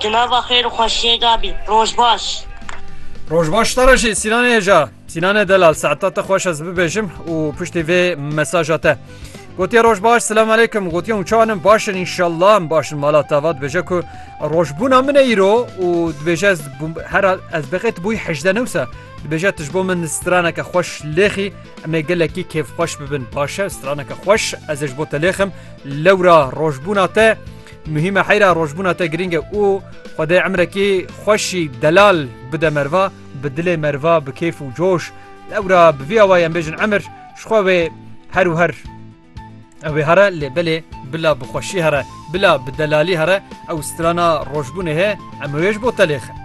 Tu nava xêr û xweşiyê de bî. Roj baş. Roj baş te re jî Sînanê hêja. Sînanê delal saeta te xweş ez bibêjim û piştî vê mesaja te. Gotiye roj baş selam aleykum gotiye û çanin başin inşallah em başin mala tava dibêje ku rojbûna min e îro û dibêje ez her ez bixêt bûy hejde newse dibêje tu ji bo min straneke xweş lêxî em ê gelekî kêf xweş bibin başe straneke xweş ez ê ji bo te lêxim lewra rojbûna te Muhîm e heyra rojbûna te girîng e û Xwedê emrekî xweşî delal bide merva, bi dilê merva bi kêf û coş. Lewra bi vî awayî em bêjin emir ji xwe wê her û her. Ew ê here lê belê bila bi xweşî here, bila bi delalî here ew strana rojbûnê hê em wê ji bo te lêxin.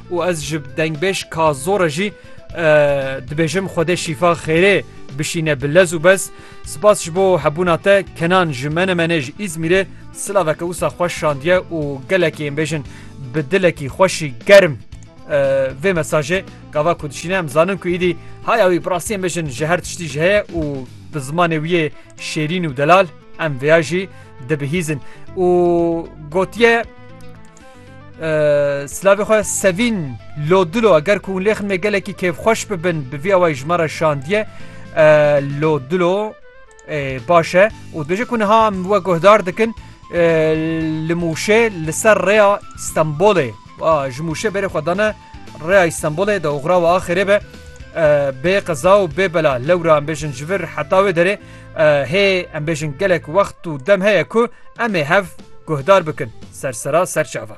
û ez ji dengbêj ka zor e jî dibêjim Xwedê şîfa xêrê bişîne bi lez û bez. Spas ji bo hebûna te Kenan ji Menemenê ji Îzmîrê silaveke wisa xweş şandiye û gelekî ên bêjin bi dilekî xweşî germ vê mesajê gava ku dişîne em zanin ku îdî haya wî birastî em bêjin ji her tiştî ji heye û bi zimanê wî yê şêrîn û delal em vêya jî dibihîzin û gotiye Silavê xwe sevîn lo dilo eger ku lêxin me gelekî kêfxweş bibin bi vî awayî ji me re şandiye lo dilo baş e û dibêje ku niha em we guhdar dikin li Mûşê li ser rêya Stenbolê ji Mûşê berê xwe dane Rêya Îstenbolê di oxira û axirê be bê qeza û bê bela lewra em bêjin ji vir heta wê derê hê em bêjin gelek wext û dem heye ku em ê hev guhdar bikin sersera serçava.